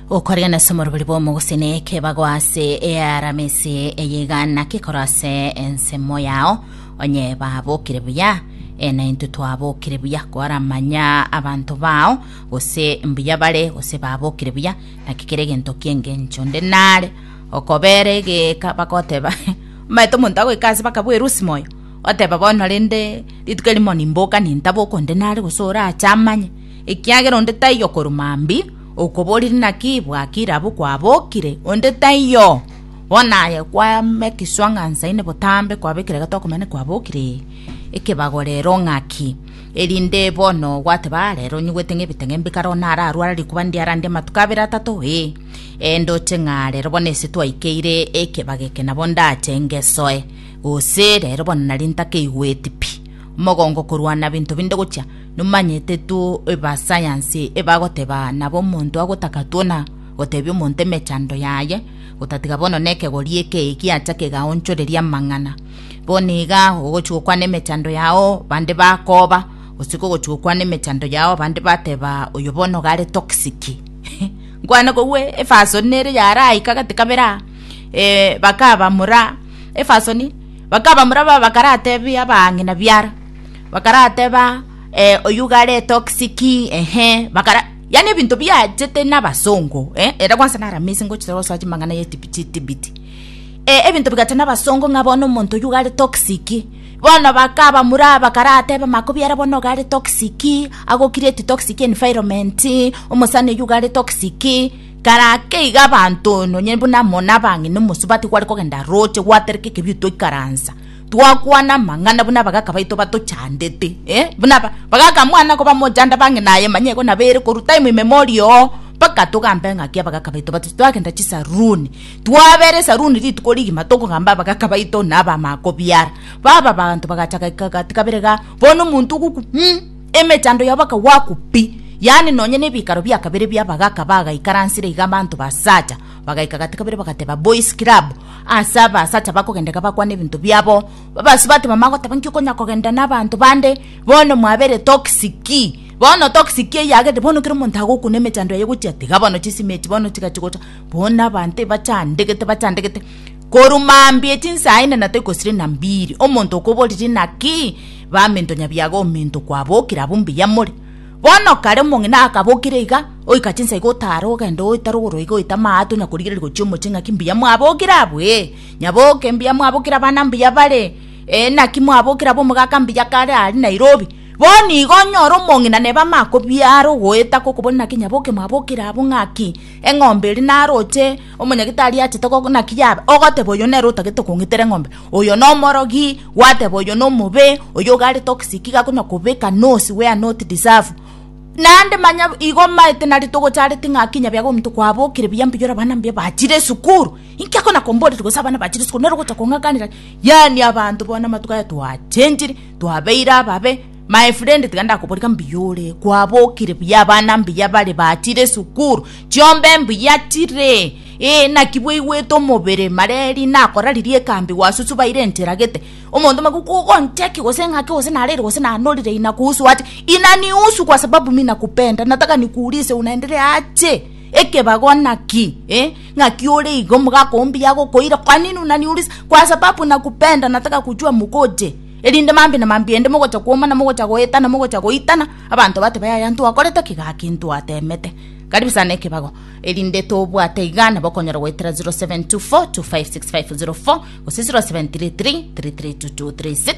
okoria nase omorobori bw'omoguseni ekebago ase earamisi eyegana kekoro ase ensemo yao onye babokire buya e, na intwe twabokire buya koramanya abanto bao gose mbuya bare gose babokire buya naki kere egento ki'engencho nde nare okobera egeka bagoteba omanyete omonto agoika ase bakabwerusi moyo oteba bono rende rituko erimo nimboka nintaboka onde nare gose orache amanye Ekiagera onde taiyo korwa mambia, okoborire naki bwaki rabu kwabokire, onde taiyo. Bono aye kwayama egeswa ng'a nsaine botambe kwabekire egetoa komanya naki kwabokire, ekebago rero ng'aki, erinde bono gwateba, Aa rero onyigwete ng'a ebiteng'embe kare one ararware rikuba ndie arandie amatuko abere atato, ee. Ee ndoche ng'a rero bono ase twaikeire ekebago eke nabo ndache ngesoe, gose rero bono nari ntakeigweti pi, omogongo korwana binto binde gochia. nomanyete two eba sayansi ebagoteba nabo omonto agotaka twona gotebia omonto emechando yaye gotatiga bono nekegori eke egiacha kegaonchoreria amang'ana bono iga ogochi gokwana emechando yao bande bakoba gose kogochi gokwana emechando yao bande bateba oyo bono gare toxic nkwana kogwe efasoni nere yaraika gati kabera eh bakabamura efasoni bakabamura baba karatebia abang'ina biara. Bakarateba, eh, oyio iga are toxic, ehe, bakara yani ebinto biachete nabasongo, eh, ere kwansa naro amazing gochia gosoa chimang'ana ye tib- chitibiti. Eh, ebinto bigacha nabasongo ng'a bono omonto oyio iga are toxic, bono bakabamura bakarateba makobiara bono iga are toxic, agocreate toxic environment, omosani oyio iga are toxic, kara ake iga abanto nonye buna amo nabang'ina omosubati gware kogenda roche gwatereka ekebiu twaikaransa. Twakwana amang'ana buna abagaka baito batochandete, buna abagaka mwana kobamochanda bang'e naye manya igo nabo ere korwa time immemorial oo, mpaka togambe ng'aki abagaka baito batocha. Twagenda chisaloon, twabera esaloon rituko rigima tokogamba abagaka baito na abamama kobiara. Baba abanto bagacha gati kabere igaa, bono omonto ogokwa um emechando yabo akagwakwa pi. Yaani nonye na ebikaro bia kabere bia abagaka bagaikaransire iga abanto basacha, Bagaika gati kabere bagateba, Boys Club, ase abasacha bakogenda iga bakwane ebinto biabo. Babasio bateba, magoteba nki okonya kogenda na abanto bande? Bono mwabere toxic. Bono toxic eyio yagerete bono kera omonto agokuna emechando yaye gochia tiga bono chisimi echi bono tiga chigocha. Bono abanto ebachandegete bachandegete. Korwa mambia echi saa ine na toikosire na mbiri. Omonto okoboriri naki? Baminto nyabiaga ominto kwabokire abwo mbuya more. Bono kare omong'ina akabokire iga, oika chinsa iga otaare ogende ogoita rogoro iga oite amaato onya korigereria gochia omochie ng'aki mbuya mwabokire abwo, ee, nyaboke mbuya mwabokire abana mbuya bare, ee, naki mwabokire abwo omogaka mbuya kare aria Nairobi. Bono igo onyore omong'ina neba amakobiare ogoeta kokoboria naki nyaboke mwabokire abwo ng'aki, eng'ombe eri naroche, omonyagitari achete naki yabe, ogoteba oyo nere otagete kong'itera eng'ombe. Oyo nomorogi, gwateba oyo nomobe, oyo ogare toxic iga konya kobeka nose where not deserve. Naende manya igo maete nari togochareti ng'a kinya biago omonto kwabokire buya mbuya ore abana mbuya bachire esukuru. Inki ekona komboreri gose abana bachire esukuru nero ogocha kong'akanera yaani abanto bono amatuko aya twachenchire, twabeire ababe. My friend tiga ndakobori ng'a mbuya ore, kwabokire buya abana mbuya bare bachire esukuru, chiombe mbuya chire. Ee, naki bweigwete omobere mareri nakoraririe ekambi gwasusu baire enchera gete. Omonto maguku ogoncheki gose ng'ake gose narere gose nanorire inakuhusu ache inanihusu kwa sababu mi nakupenda nataka nikuulize unaendelea aje ekebago naki eh, ng'aki ore igo omogaka oo mbuya agokoira kwa nini unaniuliza kwa sababu nakupenda nataka kujua mukoje erinde mambi na mambi ende mogocha kuomana mogocha goetana mogocha goitana abanto batebe yaya ntwakorete ki gaki ntwatemete karibu sana ekebago. erinde tobwate iga nabo okonyora goetera 0724256504 gose 0733332236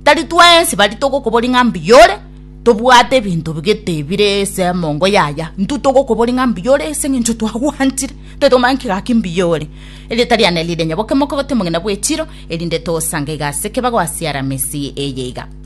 tari twensi bari togokobori ng'a mbuya ore tobwate ebinto bigete bire ase emongo yaya intwe togokobori ng'a mbuya ore ase eng'encho twagwantire tari tokomanya ki gaki mbuya ore erieta riane rire nyaboke mokobote omogina bw'echiro erinde tosange iga ase ekebago ase aramisi eye iga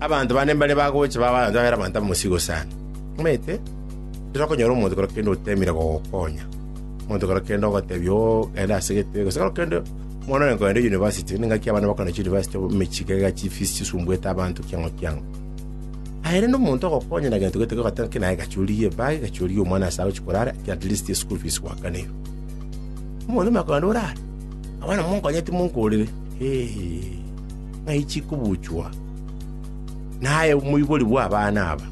Abanto bande mbare bagocha babaancha babera abanto abamosigo sana. Omanyete, titonyara konyora omonto kero kende otemire gogokonya, omonto kero kende ogotebia, oo, genda ase egetebe, gose kero kende omwana one kogenda university, ningaki abana bakogenda chuniversity emechie iga iga chifees chisumbuete abanto kiang'o kiang'o. Aye rende omonto ogokonya na gento gete gogoteba ng'a naye gacha origie ebag, gacha origie omwana ase agochia korara, ki at least eschool fees gwakaneirwe. Omonto omanye kogenda orare, abana monkonyeti monkorire, heeii. ng'aichi kobuchwa, naye omoibori bw'abana aba,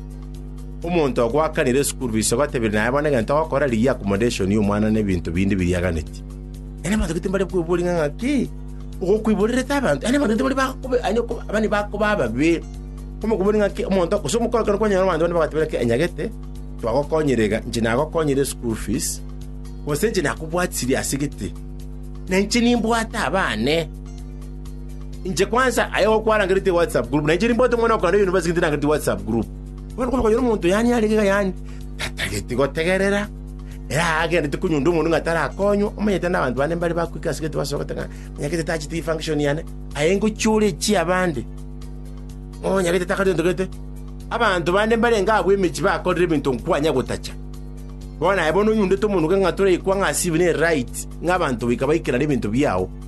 omonto ogoakanera esukuru fees ogatebia naye bono egento ogokora rigia accommodation y'omwana na ebinto binde biriaganetie. Yaani abanto gete mbare kweboria ng'a ng'aki ogokwiborerete abanto, yaani abanto gete baria bakoba yaani okoba abana bakoba ababe. Komokobori ng'aki omonto gose omokorokoro kwanyora abanto bande bagotebi ng'aki enyagete twagokonyire iga, inche nagokonyire esukuru fees, gose inche nakobwatisirie ase gete, na inche nimbwate abane. Inche kwansa aye igo kwarangerete WhatsApp group, na inche nimbote omwana o korenda university ntirangereti WhatsApp group. Bono kore kwanyora omonto yanyare igega yane, tatageti gotegerera, ere agendereti konyunda omonto ng'a tarakonywa, omanyete na abanto bande mbare bagoika ase egento basogete ng'a nonya gete tacheti eye function yane, aye ngochiore echia abande, nonya gete takare egento gete. Abanto bande mbarenge agwo emechie bakorire ebinto nkwanya gotacha. Bono aye bono onyundete omonto ng'a toraikwa ng'a ase ebibe nere right, ng'a abanto goika baikerane ebinto biao.